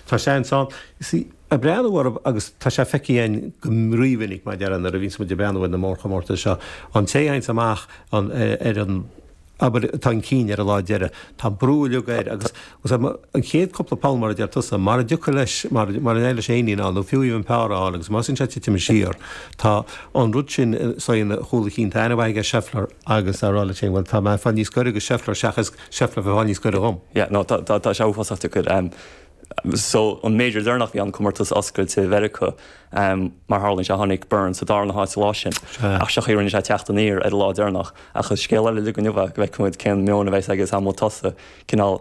Tá seans ann. Is í ag breathnú orm agus tá sé feicthe againn go rí-mhinic mar a déarfá nuair a bhíonns muid ag breathnú ar na mórchomórtais seo. An té a théanns amach an ar an, abair, atá chun cinn ar an lá deiridh, tá an brú uilig air agus an chéad cúpla poll mar a deir tusa, mara dtiocfaidh leis, mara n-éiríonn leis éinín ann nó fiú even par ann agus má thosaíonn sé ag titim siar, tá an rud sin, so i gcúl a chinn, tá ainmhí aige Scheffler agus srl. Bhuel, tá mé ag fáil níos gaire go Scheffler seachas. Scheffler a bheith ag fáil níos gaire dhom. Yeah, no, tá, tá, tá sé uafásach deacair. Um, so, an Major deireanach bhí an comórtas oscailte i Mheiriceá, um, mar tharlaíonn sé tháinig Burns sa dara na háit sa lá sin, Sea. ach sé an chaoi a rinne sé teacht aniar ar an lá deireanach, ach is scéal eile uilig é inniu go bhfeicfimid cén meon a bheas aige is amhlaidh tosaigh, cineál,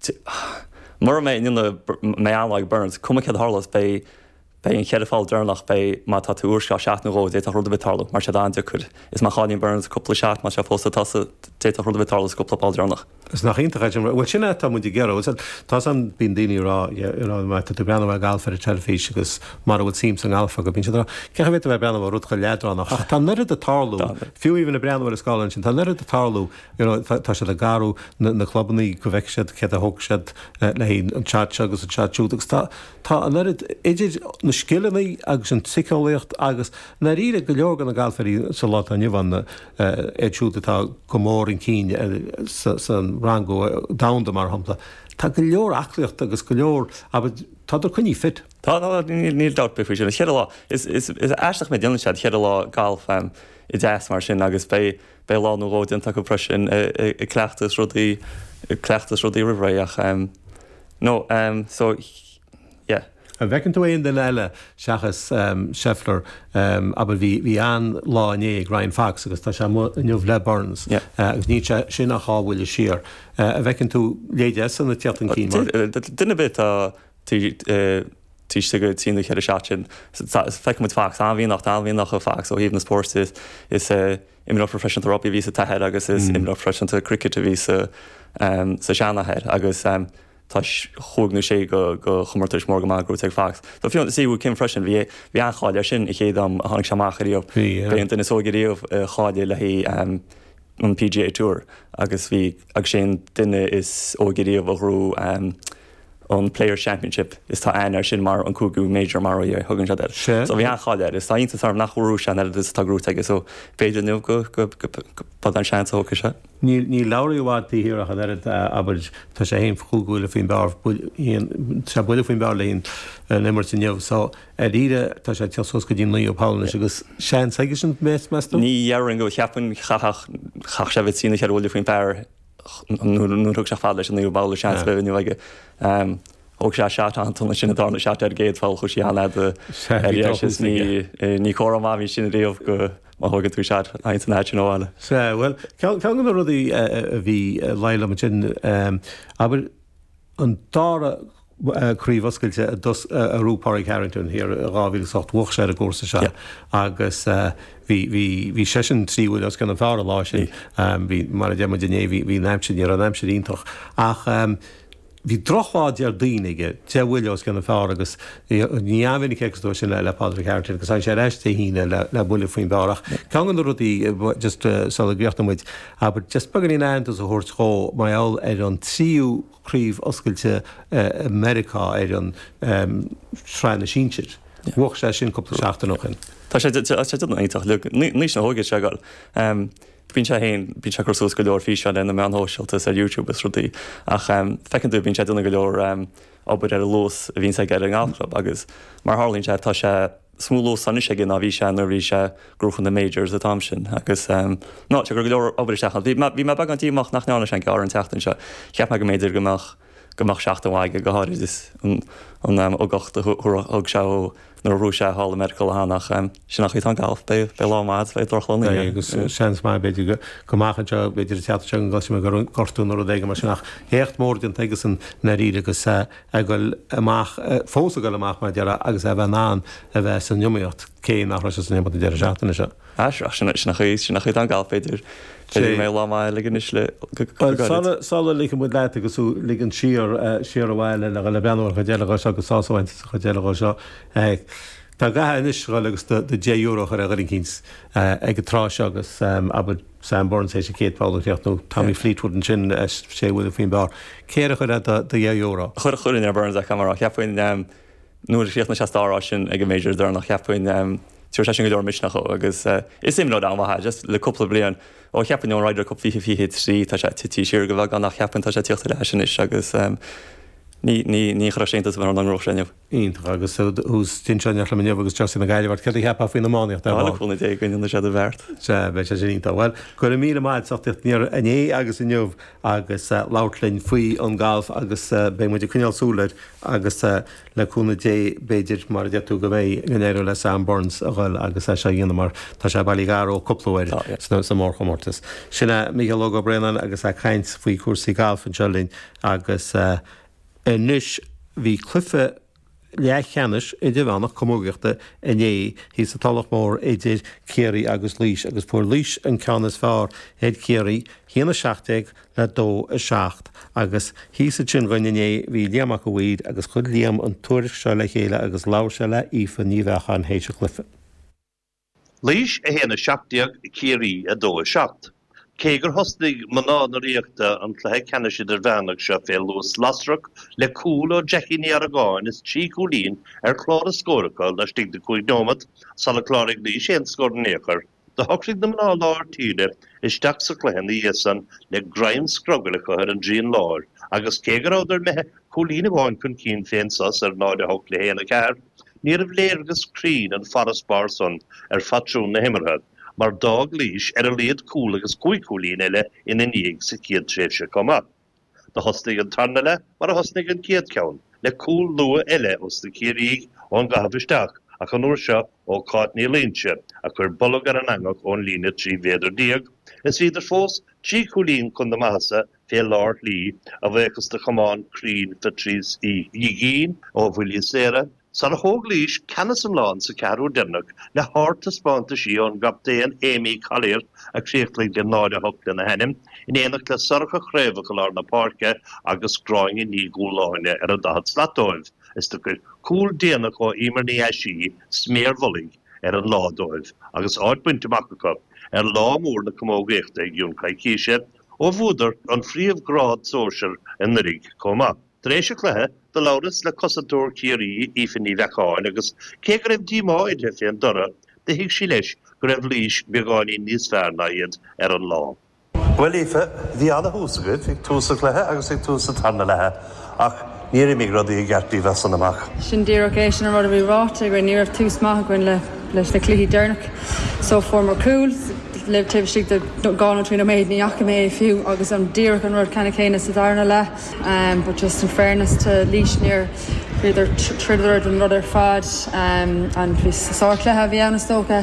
T, Mura mbeidh an ionadh mé an-lag, burns, cuma céard a tharlós, beidh, beidh na cheithre pholl deireanach, beidh, má tá tú i bhfoisceacht shot nó dhó, d'fhéadfadh rud ar bith tarlú, mar tá siad an-deacair, is má chailleann Burns cúpla shot, má tá sé fós sa tosach, d'fhéadfadh rud ar bith tarlú sa cúpla poll deireanach. Is nach iontach é sin, bhuel sin é atá muid ag iarraidh, tá san, bíonn daoine ag rá, yeah, you know, má tá tú ag breathnú ar an galf ar an teilifís agus mara bhfuil suim sa ngalf agat, bíonn siad ag rá, cén chaoi a bhféadfá a bheith ag breathnú ar rud chomh leadránach ach tá an oiread ag tarlú, fiú even ag breathnú ar an scáileán sin, tá an oiread ag tarlú, you know, tá siad ag athrú na clubannaí go bhfeice siad céard a thógfaidh siad le haghaidh an shot seo agus an shot siúd agus tá, tá an oiread, idir na scileanna agus an tsíceolaíocht agus ndáiríre go leor de na galfairí sa lá atá inniu ann, iad siúd atá go mór chun cinn sa rangú domhanda mar shampla, tá go leor aclaíochta agus go leor, abair, tádar coinnithe fit. Tá, tá, níl dabht ar bith faoi sin. Is cheithre lá, is aisteach mar a dhéanann siad cheithre lá galf i dteas mar sin agus beidh, Beidh lá nó dhó déanta acu freisin ag cleachtadh is rudaí, ag cleachtadh is rudaí roimh ré ach no so yeah. An bhfeiceann tú aon duine eile seachas Scheffler abair bhí an-lá inné ag Ryan Fox agus tá sé amuigh inniu le Burns agus níl sé sin ach dhá bhuille siar. An bhfeiceann tú a leithéidí sin ag tíocht chun cinn mar. Duine ar bith tá Taobh istigh de thrí nó ceithre seat sin feicfidh muid Fox an-mhianach, an-mhianach i Fox ó thaobh na spóirt de. Is imreoir proifisiúnta rugbaí a bhí sa t-athair agus is imreoir proifisiúnta cricit a bhí sa seanathair agus chuaigh na sé go comórtais mór go maith go raibh tú ag Fox. Tá fiú an Si Woo Kim freisin, bhí an-cháil air sin an chéad am a tháinig sé amach ariamh. Bhí an duine is óige riamh a cháiligh le haghaidh an PGA Tour agus bhí sé an duine is óige riamh a ghnóthaigh an Players Championship is tá aithne air sin mar an cúigiú major mar a thugann siad air. So bhí an-cháil air is tá iontas orm nach bhfuil ceann eile duit atá gnóthaithe aige so b'fhéidir inniu go bhfuil an seans a thógfaidh sé. Níl Lowry i bhfad taobh thiar ach an oiread dá abair tá sé fhéin cúig bhuille faoin bpar dhá bhuille faoin bpar leis an imirt inniu so ar deireadh tá sé ag teacht suas go dtí naoú poll anois agus seans aige sin meas tú? Ní déarfainn go bhfuil cheapfainn chaithfeadh sé a bheith trí nó cheithre bhuille faoin bpar. Nuair a thug sé chomh fada leis an naoú babhla seans a bheith inniu aige. Thóg sé seat an t-ionad sin a dtarlódh seat ar an gcéad pholl. Chuaigh sé an-fhada ar dheis is ní comhartha maith a bhí sin riamh go má thógann tú seat aon san áit sin abhaile. Sea, bhuel, ceann de na rudaí a bhí ag laghdú liom ansin, abair, an dara Craobh Oscailte a bhuaigh Pádraig Harrington thiar i 2008. Bhuach sé ar an gcúrsa seo agus bhí bhí bhí seisean trí uair os cionn an phár an lá sin. Bhí mar a deir muid inné bhí bhí an aimsir ní raibh an aimsir iontach ach bhí drochlá Déardaoin aige deich mbuille os cionn an phár agus ní an-mhinic agus dó sin le Pádraig Harrington agus tháinig sé ar ais Dé hAoine le le buille faoin bpár ach ceann go na rudaí just sula gcríochnóidh muid abair just beagáinín aitheantas a thabhairt dhó mar gheall ar an tríú craobh oscailte i Meiriceá ar an tSraith na Sinsear. Bhuach sé sin cúpla seachtain ó shin. Tá sé ag déanamh iontach le haois na hóige sa ngalf. Bíonn sé féin, bíonn sé ag cur suas go leor físeáin ar na meáin shóisialta is ar YouTube is rudaí ach feiceann tú bíonn sé ag déanamh go leor obair ar an luas a bhíonns aige ar an nGalf Club agus mar a tharlaíonn sé tá sé níos mó luas anois aige ná bhí sé nuair a bhí sé ag gnóchan na majors an t-am sin. Agus tá sé ag cur go leor obair isteach ann. Bhí mé beagán díomách nach ndearna sé an gearr an tseachtain seo. Cheap mé go mb'fhéidir go mbeadh go mbeadh seachtain mhaith aige, go háirid is an ugach a thug sé ó nuair a ghnóthaigh sé thall i Meiriceá le theann ach sin an chaoi atá an galf, beidh lá maith agat, beidh drochlá ina dhiaidh. Agus seans maith b'fhéidir go mbeadh an seo b'fhéidir an tseachtain seo go gcloisfidh mé gur gortú nó rud éigin mar sin ach éacht mór déanta aigesean i ndáiríre agus ag dul amach, fós ag dul amach mar deireadh agus é a bheith in ann a bheith san iomaíocht cé nach raibh sé san iomaíocht an deireadh seachtaine seo. Ach sin, sin an chaoi, sin an chaoi atá an galf b'fhéidir. B'fhéidir go mbeidh lá maith aige anois le go go Bhuel go gairid. sula, sula ligfidh muid leat agus tú ligint siar, siar abhaile le dhul ag breathnú ar an chuid eile dhó seo agus sásamh a bhaint as an chuid eile dhó seo, tá agat anois dhul agus do do dheich euro a chur ar dhuine eicínt ag an tráth seo agus abair, Sam Burns, é sin Kate Powell an chéacht, nó Tommy Fleetwood ansin, sé uair faoin bpár. Cé air a chuirfeá do dheich euro? Chuir chuirfinn ar Burns acu, mar a cheapfainn, nuair a chríochnaigh sé sa dara háit ansin ag an Major deireanach, cheapfainn, tabharfaidh sé sin go leor misneach dhó agus is imreoir an-mhaith é, just le cúpla bliain. Ó, cheapfainn, ón Ryder Cup 2023 tá sé tite siar go bheagán ach cheapfainn tá sé ag tíocht ar ais anois agus ní chuirfeadh sé iontas ar bith orm dá ngnóthódh sé inniu. Iontach agus tú istigh anseo in éineacht liom inniu agus geansaí na Gaillimhe ort. Céard a cheapfá faoin iománaíocht ar Tá na ball? cúnamh Dé againn, an é seo do bheart? Sea, beidh sé sin iontach. Bhuel, go raibh míle maith a'd as ucht teacht aniar inné agus inniu agus labhairt linn faoi an galf agus beidh muid ag coinneáil súil air agus le cúnamh Dé b'fhéidir mar a deir tú go mbeidh, go n-éireoidh le Sam Burns a dhul agus é seo a dhéanamh mar tá sé bailithe gar dhó chúpla uair Tá, yeah. sa mórchomórtas. Sin é Mícheál Óg Ó Braonáin agus é ag caint faoi chúrsaí gailf anseo linn agus eh. Anois bhí cluiche leathcheannais idirmheánach camógaíochta inné thíos sa Tulach Mhór idir Ciarraí agus Laois agus fuair Laois an ceann is fearr ar Chiarraí, 1 17 le 2 7. Agus thíos ansin dhúinn inné bhí Liam Mac a' Mhaoir agus chuir Liam an tuairisc seo le chéile agus labhair sé le hAoife Ní Bheacháin théis an chluiche. Laois 1, 17, Ciarraí 2, 7. Cé gur thosnaigh mná na Ríochta an cluiche ceannais idirmheánach seo fé luas lasrach le cúl ó Jackie Ní Argáin is trí chúilín ar chlár a scóir acu laistigh de chúig nóimeat sular chláraigh Laois aon scór in aon chor, do shocraigh na mná lár tíre isteach sa chluiche ina dhiaidh san le greim scrogaill acu ar an dtrian láir agus cé go rabhadar meithee Cúilín amháin chun cinn fén sos ar 0-8 le 1-4, níorbh léargas cruinn an farasbarr san ar phatrún na himeartha mar d'fhág Laois ar a laghad cúl agus cúig chúilín eile ina ndiaidh sa chéad tréimhse chomh maith. Do thosnaigh an tarna leath mar a thosnaigh an chéad cheann, le cúl luath eile ós na Ciarraígh ón gcaitheamh isteach ach an uair seo ó Cáit Ní Loingsigh a chuir bolg ar an eangach ón líne trí mhéadar déag is bhíodar fós trí chúilín chun na maitheasa fé lár shlí, a bhuíochas do chamán cruinn Phatrice Ní Dhuigín ó bhuillí saora, sar a thóg Laois ceannas iomlán sa cheathrú dhéanach le hardtaispeántaisí ón gcaptaon Aimee Collier a chríochnaigh le 0-8 lena hainm, in éineacht le Sorcha Chraobhach i lár na páirce agus Gráinne Ní Dhúláine ar an 40 slat dóibh, is do chuir cúl déanach ó Emer Ní Aisí sméar mhullaigh ar an lá dóibh agus áit bainte amach acu ar lá mór na camógaíochta i gcionn coicíse. Ó bhuadar an phríomhghrád sóisear anuiridh chomh maith. Tar éis an cluiche, do labhras le cosantóir Ciarraí, Aoife Ní Bheacháin agus cé go raibh díomá uirthi fén dtoradh, do thuig sí leis go raibh Laois beagáinín níos fearr ná iad ar an lá. Bhuel Aoife, bhí ana-thús agaibh, ag tús an cluiche agus ag tús an tarna leatha. Ach níor imigh rudaí i gceart díbh as san amach. Sin díreach é, sin an rud a bhí ráite againn. Ní raibh tús maith againn leis na cluichí deireanach so fuaireamar cúl libh taobh istigh de dhá nó trí nóiméad, ní fhaca mé é fiú agus an díreach an rud ceannann céanna sa dara leath but just in fairness to Laois níor bhíodar throideadar don rud ar fad and bhí sárchluiche a bhí ann is dócha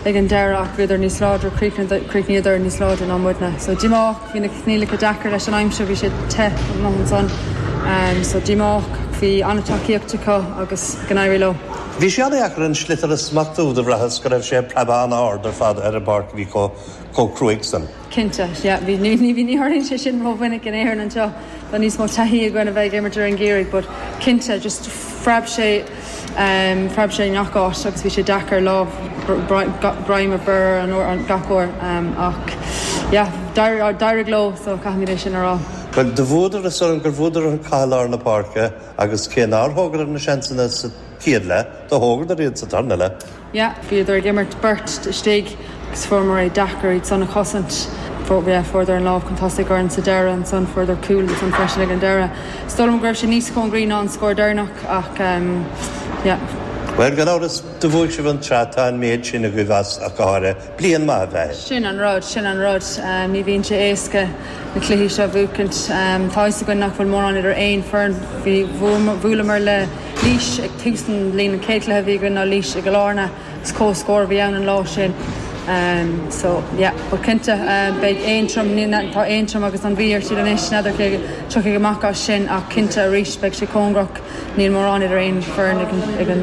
ag an deireadh ach bhíodar níos láidre críochnaíodar níos láidre ná muidne so díomá. Bhí na coinníollacha deacair leis an aimsir, bhí sé te amuigh ansan so díomách. Bhí an-tacaíocht acu agus go n-éirí leo. Bhí sé an-dheacair an sliotar a smachtú, do bhraitheas go raibh sé ag preabadh an-ard ar fad ar an bpáirc a bhí chomh cruaidh san. Cinnte, yeah, bhí, ní, ní, ní tharlaíonn sé sin ró-mhinic in Éirinn anseo, tá níos mó taithí againn a bheith ag imirt i lár an gheimhridh but cinnte just phreab sé. Phreab sé i ngach áit agus bhí sé deacair lámh, greim a bhreith air gach uair ach yeah d'éirigh leo so caithfimid é sin a rá. Bhuel, do bhuadar is dóigh liom gur bhuadar an cath i lár na páirce agus cé nár thógadar na seansanna sa chéad leath, do thógadar iad sa tarna leath. Yeah, bhíodar ag imirt beirt istigh agus fuaireamar é deacair iad san a chosaint. Fuair, yeah, fuaireadar an lámh chun tosaigh orainn sa deireadh ansan fuaireadar cúl ansan freisin ag an deireadh. Is dóigh liom go raibh sé níos cóngaraí ná an scór deireanach ach ehm, yeah. Bhuel, gan amhras, do bhuaigh sibh an tsraith, tá an méid sin agaibh ach go háirithe. Bliain maith a bheith air. Sin an rud, sin an rud. Ní bhíonn sé éasca na cluichí seo a bhuacaint. Tá fhios againn nach bhfuil mórán idir aon foireann. Bhí, bhuamar, bhuaileamar le Laois ag tús an bhliain, an chéad chluiche a bhí againn ná Laois i gCill Áirne is comhscór a bhí ann an lá sin. So, yeah, but cinnte beidh Aontroim, ní, na, tá Aontroim agus an Mhí ar siúl anois, n'fheadar cé tiocfaidh amach as sin ach cinnte arís beidh sé cóngarach, níl mórán idir aon foireann ag an, ag an,